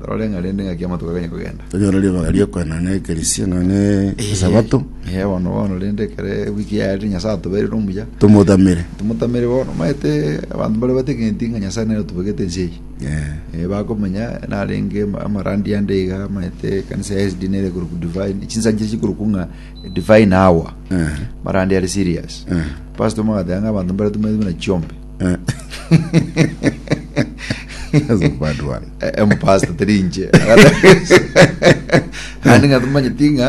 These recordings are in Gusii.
Rore ng'a rende ng'aki amatuko aganye kogenda. Tonyore ribaga riokoenana n'ekerisia nonya ne Esabato. Ee, bono bono rende ekero ewiki yaerire Nyasae atobeirire omuya, Tomotamere. tomotamere bono. Omanyete abanto mbare bategenti ng'a Nyasae nere otobegete ense eye. Ee. Eh, bakomenya narenge ama- amarandi ande iga amanyete ekanisa ya SD nere ekorokwa divine chinsancha chikorokwa ng'a divine hour Ee. marandi are serious Ee. pastor omo agateba ng'a abanto mbare tomaete buna chiombe That's a bad one. empasta teri inche ande ng'a tomanyeti ng'a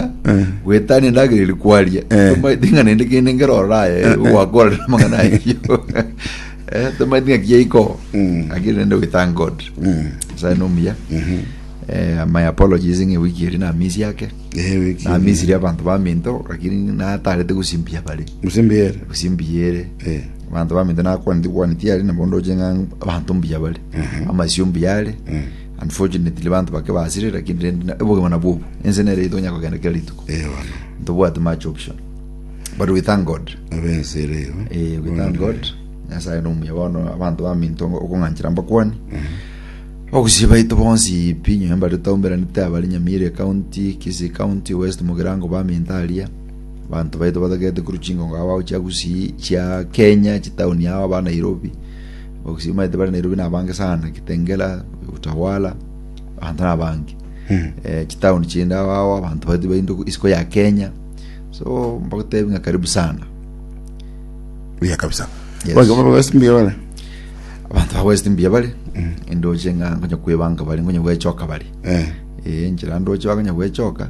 gwetania endagera eri kwaria Eh. tomanyeti ng'a nende kende ngeroraya gwakorera amang'ana ayio Eh, tomanyeti ng'a kiaiko Mm. akiri nende we thank god Mm. nyasaye nomuya Mhm. Eh, my apologies ng'a ewiki eri namisi ake Eh, wiki- namisiri abanto baminto lakini natarete gusimbia bare Musimbi yere. gusimbia ere Eh. Abanto baminto nakwaneti kwani tiari na bondo oche ng'a abanto mbuya bare. Ehe. Amasio mbuya are. Eh. Unfortunately banto bake basire lakini rende na- obogima nabwo obo. Ense nere ito onya kogenda kera rituko. Eh, bono. Ntobwati much option. But we thank God. Abense ere igo. Eh, we thank God. Nyasaye nomuya bono abanto baminto okong'anchera mbakwani. Abagusii baito bonsi pi inyo mbare taumberanete abare Nyamire County, Kisii County, West Mugirango baminto aria. Abanto baito batagete korwa chingongo agwo chia gusii chia Kenya chitauni agwo aba Nairobi bagusii maete bari Nairobi na abange sana Kitengela Utawala abanto na abange hmm. eh, chitauni chinde agwo agwo abanto baito baito isiko ya Kenya so mbagotebi nga karibu sana buya kabisa yes. abantu bawest mbuya bari hmm. endoche nga ngonya kwebanga bari ngonya gwechoka bari eh. eh, njira ndoche bagonya gwechoka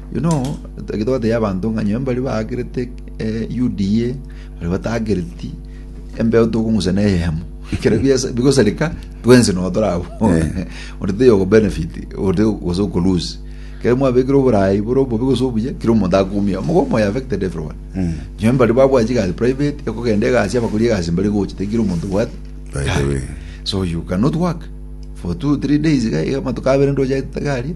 Yuno egetogote y'abanto ng'a nyowe mbaria baagerete UDA, baria bataagereti, embeo tokong'usa neyemo. Ekero bias- bigosareka, twensi nogo tore abwo. Onde taiyo okobenefit, onde gose okolose. Ekero mwabekire oboraai bore obobe gose obuya, kera omonto akoumia. Mogoka omoyo affected everyone. Nyowe mbaria babwate chigasi private, ekogenda egasi, abakori egasi mbaria gocha, tari kera omonto obwate By the way. so you cannot work for two three days iga iga amatuko abere ndoche aete gari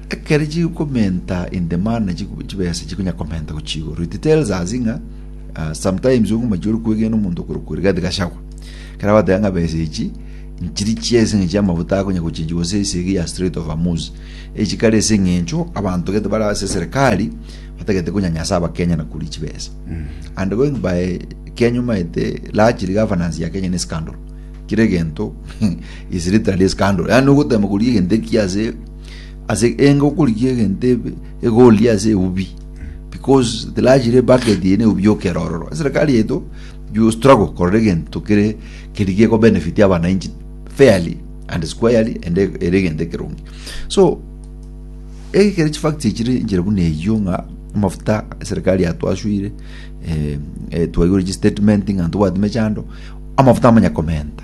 Ekero chikomenta in the manner chibesa chikonya komenta gochia igoro it tells us ng'a uh, sometimes onge machia ore kwegena omonto okorokwa rigathi gachagwa kera batega ng'a besa echi nchiri chiese ng'a chiamafuta akonya gochenji gose esege ya straight of amus echi kare ase eng'encho abanto gete bara ase serikali batagete konyanyasa abakenya na kuri chibesa mm. and going by kenya omaete largely governance ya kenya ni scandal kire gento is literally scandal yani ogotema kuri egento ekiase Ase enga okorigia egento ebe egorigia ase eubi because the large re bucket ye ne ubi okera ororo. Serikali yetu you struggle korora egento kere kerigia ko benefit abananchi fairly and squarely and e- ere egento ekeronge. So ege kere chifacts echire inchire buna eyio ng'a amafuta serikali yatwasuire eh, eh, twaigure chistatement ng'a ntobwati mechando amafuta amanya komenta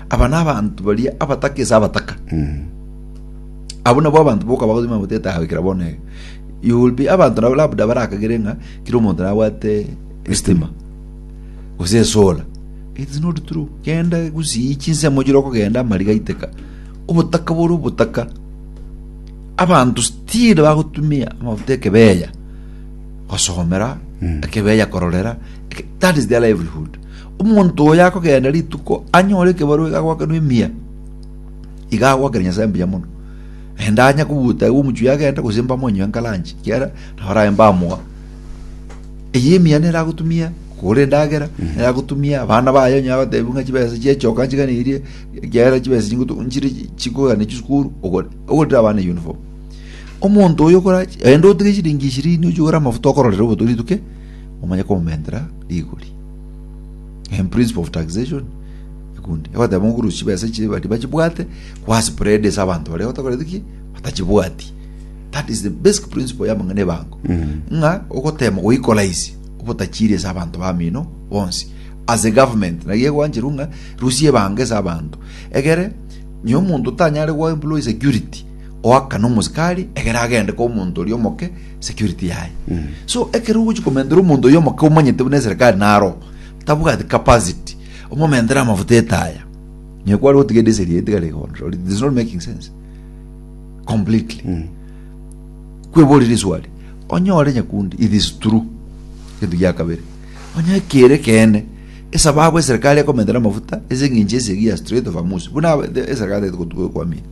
Aba nabanto baria abataka ase abataka. Abwo nabwo abanto boka bagotuma amafuta etahabu ekero bono ege. You will be abanto nabo labda barakagere ng'a kera omonto nabwate estima. Gose esola. It is not true. Genda gusii chinsemo chire okogenda amariga aiteka. Obotaka bore obotaka. Abanto still bagotumia amafuta ekebeya gosomera ekebeya kororera eke- that is their livelihood Omonto oyo akogenda rituko anyore ekebarua iga agwakerwe emiya, iga agwakera Nyasae mbuya mono. Enda anya kobuta igo omochie agende gose mbamonywe nkaranchi, kiara nabo araye mbamoa. Eye emiya nere agotumia kogora endagera, nere agotumia abana baye onye agotebiwa ng'a chibesa chiachoka nchiganirie, ekiagera chibesa chingotu nchire chikogana chisukuru, ogore ogorire abana uniform. Omonto oyo okora enda otige chiringi ishirini ochie ogore amafuta okororera oboto rituke, omanye komomentera rigori. in principle of taxation ekundi egoteba ng'a okorusia chibesa echi bari bachibwate kwaspread ase abanto baria batakoreti ki batachibwati that is the basic principle y'amang'ana ebango ng'a ogotema goikolaisia obotachiri ase abanto bamino bonsi as a government naki egwancherwa ng'a rusia ebango ase abanto egere nyo omonto tanyare goa employee security oakane omosikari egere agende kwa omonto oria omoke security yaye so ekero ogochi komentera omonto oyo omoke omanyete buna eserekari naro tabwati capacity omomentere amafuta etaya nyo kware gotiga edesel yaye tigare igonrori it is not making sense completely kweborire iswali onyore nyakundi it is true gento gia kabere onye kere kene esababu eserekari ekomentera amafuta ase eng'encho esegi ya straight of amusi buna aba- the- eserekari tagete gotu- gokwamia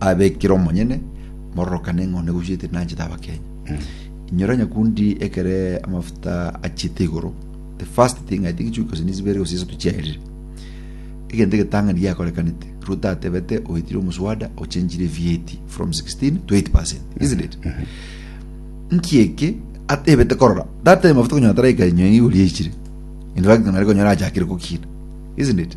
abekire omonyene mororokane ng'a one gochiete nanchete abakenya inyora nyakundi ekere amafuta achiete igoro the first thing i think chikosi nisibere gose isatu chiaerire egento egetang'ani giakorekanete ruto atebete oitire omuswada ochenchire vat from 16 to 8 percent isn't it nkieke atebete korora data ya mafuta konyora taraika inyo igori yaichire in fact nari konyora achakire kokina isn't it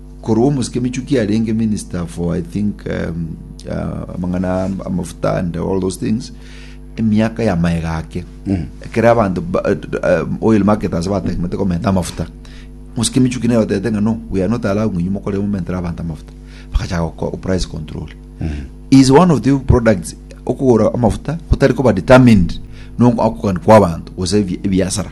Korwa omosike Michuki arenge minister for I think um, uh, amang'ana am- amafuta and all those things emiaka ya maega ake ekero abanto ba- uh, oil market ase bategemete komenta amafuta mosike Michuki naye otete ng'a no we are not allowing inyu mokore momentere abanto amafuta bakachaka goko- price control is one of the products okogora amafuta gotari koba determined nokogani kwa abanto gose ebi- ebiasara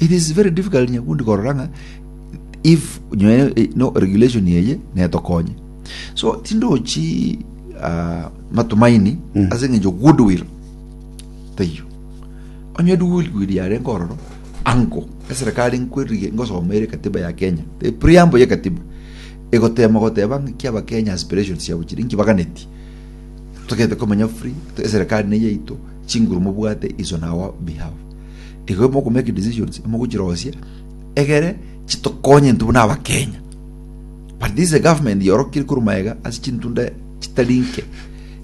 It is very difficult nyakundi korora ng'a if nyo eh, no regulation eye netokonye so tindochi ah, matumaini ase eng'encho goodwill taiyo onye goodwill yare nkororo ango eserikali nkwerige ngosoma ere katiba ya kenya the preamble ye katiba egotema goteba ng'iki abakenya aspirations siabo chiri nki baganeti togete komenya free to- eserikali neye yaito chinguru mobwate is on our behalf igo imoko make decisions imogochirosia egere chitokonye intwe buna abakenya but this is a government yorokire korwa maega ase chintunda chitari nke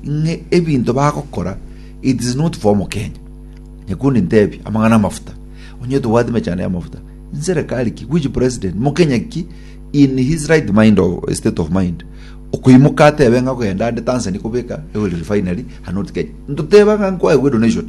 ng'e ebinto bagokora it is not for omokenya nyakundi ntebi amang'ana amafuta onye tobwate mechando y'amafuta nserekari ki which president mokenya ki in his right mind of state of mind okoimoka atebe ng'a kogenda ande tanzania kobeka oil refinery and not kenya ntoteba ng'a nkoegwe donation